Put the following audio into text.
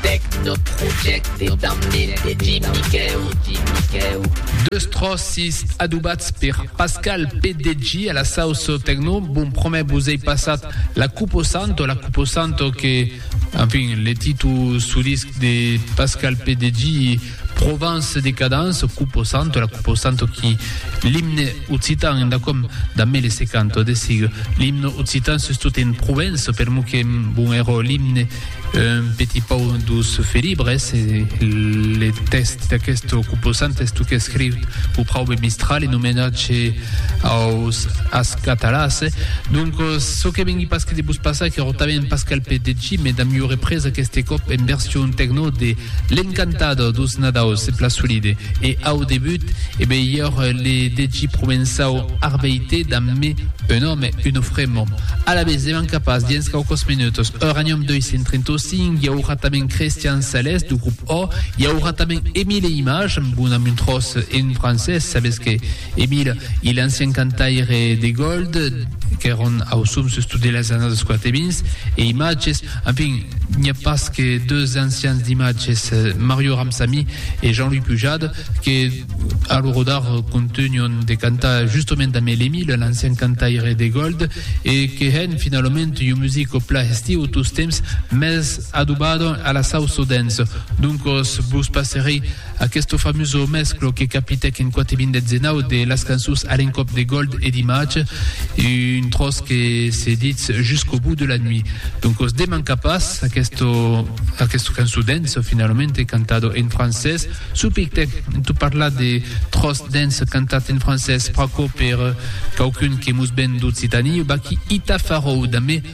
Tecnoprojecte damb nit de Jim Miquèu. Deus tròcis adobats per Pascal PDG a la sauce tecno. Bon promès vos ei passat la cuposanto, la cuposanto que, enfin, le títol solist de Pascal PDG, Provence de cadence, coupe santo, la coupe santo qui l'hymne occitan en dacom da 1050 de sigle l'hymne occitan sus tout en Provence per mo que bon ero l'hymne un petit pau dos felibres le test d'aquest coupe santo est que escriu pour praube mistral e nomenat chez Aus as catalàs, doncos çò que vengui pas que de vos passar qu'èro tanben pas calpet de chi, me damb ua represa aqueste còp en version tecno de L'Encantado dos Nadaus ep la solide e au debut e be i ère le de chi provençau Arbeite damb me un òme uno fremo alavetz devan capàs dens quauquòs menutos Uranium 235 i aurà tanben Christian Sales du grup O i aurà tanben Emile Image amb una muntròs en francés sabetz que Emile e l'ancian cantaire de Gold qu'èron auçons sus tot de las annadas quartevins e imatges, enfin, n'i a pas que deus ancians d'imatges, Mario Ramsamy e Jean-Louis Pujade, que a lo rodar contunhon de cantar justament amé l'Emile, l'ancian cantaire de Gold, e que hèn finalament un musico pla estiu tostemps mès adobado a la Sauce Dance. Doncos vos passerei Aqueste famoso mesclo que capitèc en quate vint deth zenau de las cançons a l'encòp de Gold e d'Image, un tròç que se ditz Jusqu'au bout de la nuit. Donc os demanca pas, aqueste aqueste cançon dance finalament cantado en francés, subitèc tot parlar de tròç dance cantat en francés, pr'aquò per quauqu'un que mos ven d'Occitanie, baquí Ita Farou damb